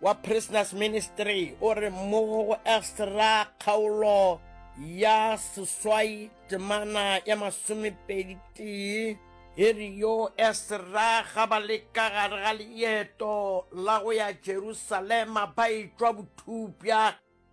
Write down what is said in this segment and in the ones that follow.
wa Prisoners Ministry o re mo go extra kgaolo ya seswai temana ya masomepedi tee e re yo extra ga ba le ka gare ga leeto la go ya Jerusalema ba etšwa bothupša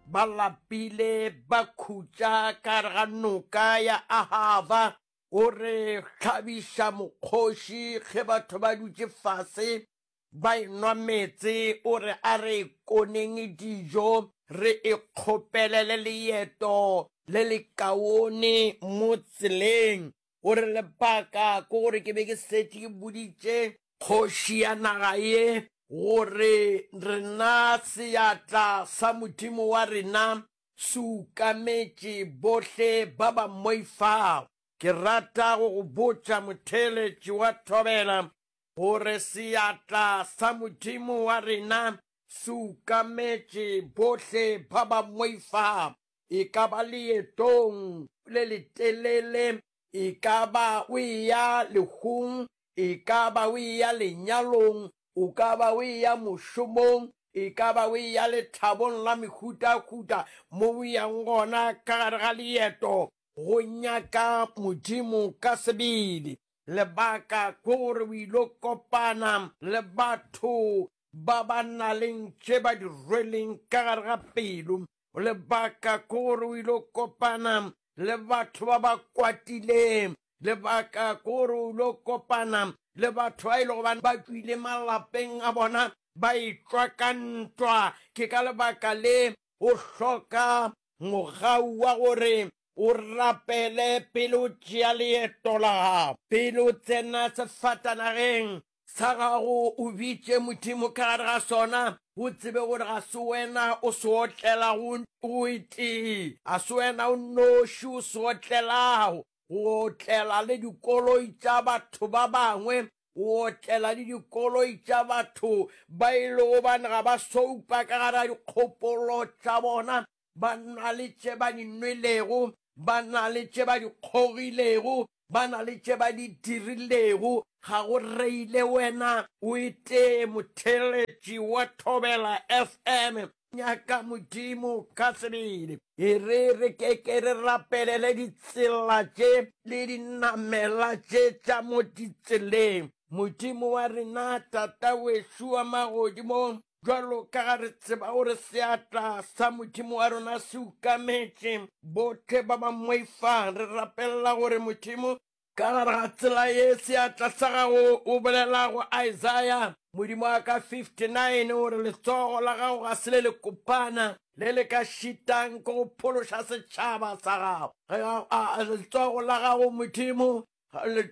ba lapile ba khutša ka gare ga noka ya Ahava o re hlabiša mokgoši ge batho ba dutše fase Ba enwa meetse, o re a re koneng dijo re ikgopelele leeto le lekaone mo tseleng. O re lebaka ke gore ke be ke setše ke boditše kgoši ya naga ye gore rena seatla sa Modimo wa rena se ukametše bohle ba ba mmoifago. Ke rata go go botša motheeletši wa thobela gore seatla sa Modimo wa rena se ukametše bohle ba ba moifa, e ka ba leetong le letelele, e ka ba o eya lehung, e ka ba o eya lenyalong, o ka ba o eya mošomong, e ka ba o eya lethabong la mehutahuta, mo o yang gona ka gare ga leeto go nyaka Modimo ka sebele. Lebaka ke gore o ilo kopana le batho ba ba naleng tše ba di rweleng ka gare ga pelo. Lebaka ke gore o ilo kopana le batho ba ba kwatileng. Lebaka ke gore o ilo kopana le batho ba e lego ba ba tšwile malapeng a bona ba etšwa ka ntwa. Ke ka lebaka le o hloka mogau wa gore o rapele pele o tšea leeto la gago. Pele o tsena sefatanageng sa gago, o bitše Modimo ka gare ga sona, o tsebe gore ga se wena o se otlelago o itee, ga se wena o nnoši o se otlelago, go otlela le dikoloi tša batho ba bangwe, go otlela le dikoloi tša batho ba e lego bane ga ba soupa ka gare ga dikgopolo tša bona, ba na le tše ba di nwelego, ba na le tše ba di kgogilego, ba na le tše ba di dirilego, ga go reile wena o etee motheeletši wa Thobela FM Nyaka Modimo ka sebele. E re re ke ke re rapelele ditsela tše le dinamela tše tša mo ditseleng. Modimo wa rena, Tata wešo wa magodimong, bjalo ka ga re tseba gore seatla sa Modimo wa rona se ukametše bohle ba ba moifang, re rapelela gore Modimo Ka gare ga tsela ye seatla sa gago o bolela go Isaiah, Modimo wa ka 59, o re, Letsogo la gago ga se le le kopana, le le ka šitang ke go phološa setšhaba sa gago. Letsogo la gago Modimo,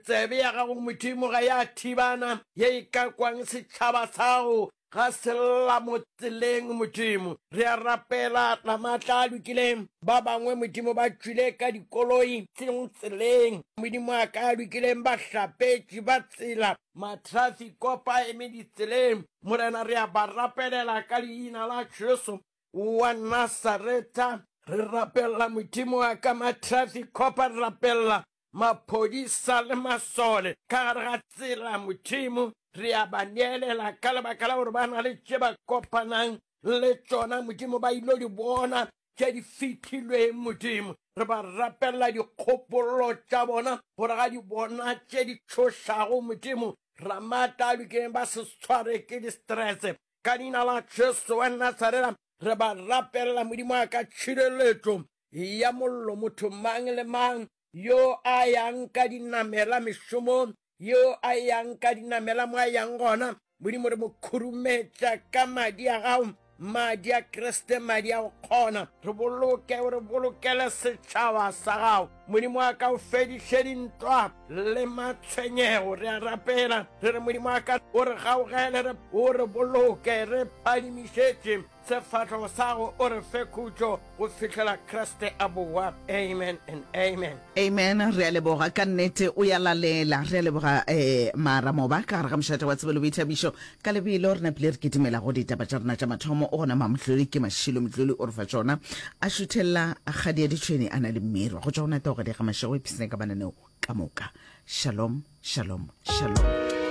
tsebe ya gago Modimo ga ya thibana, ye e ka kwang setšhaba sa gago, Ga se lla mo tseleng, Modimo. Re a rapela, la maatla a lokileng. Ba bangwe, Modimo, ba tšwile ka dikoloi, seng tseleng, Modimo a ka a lokileng, ba hlapetše, ba tsela, matrafiko, ba eme ditseleng. Morena, re a ba rapelela ka Leina la Jesu wa Nasareta. Re rapella, Modimo wa ka, matrafiko, ba rapella, maphodisa le masole ka gare ga tsela, Modimo, re a ba neelela ka lebaka la gore ba na le tše ba kopanang le tšona, Modimo, ba ilo di bona tše di fitilweng, Modimo. Re ba rapelela dikgopololo tša bona gore ga di bona tše di tšhošago, Modimo, ramata a lokeng ba se tshware ke distrese ka leina la Jesu wa Nasarela re ba rapelela Modimo a ka tšhireletšo ya mollo motho mang le mang yo a yang ka dinamela mešomong, yo a yang ka dinamela mo a yang gona. Modimo re mo khurumetša ka madi a gago, madi a Kriste, madi a go kgona. Re boloke, o re bolokele setšhaba sa gago. Modimo a ka o fediše dintwa le matshwenyego. Re a rapela, re re Modimo a ka o re gaogele, o re boloke, re phadimišetše Sefahlogo sa gago o re fe khutšo go fihlela Kriste a bowa. Amen and amen. Amen re a leboga ka nnete o ya lalela re a leboga eh mara moba ka gare ga mošate wa tsebelo boithabišo ka lebelo re napile re kitimela go ditaba tša rena tša mathomo o gona mamohloli ke mašilo motloli o re fa tšona a šuthella kgadi ya ditšhweni a na le mmirwa go tšwa go nata o ga diega mašego e psne ka mananeo ka moka shalom shalom shalom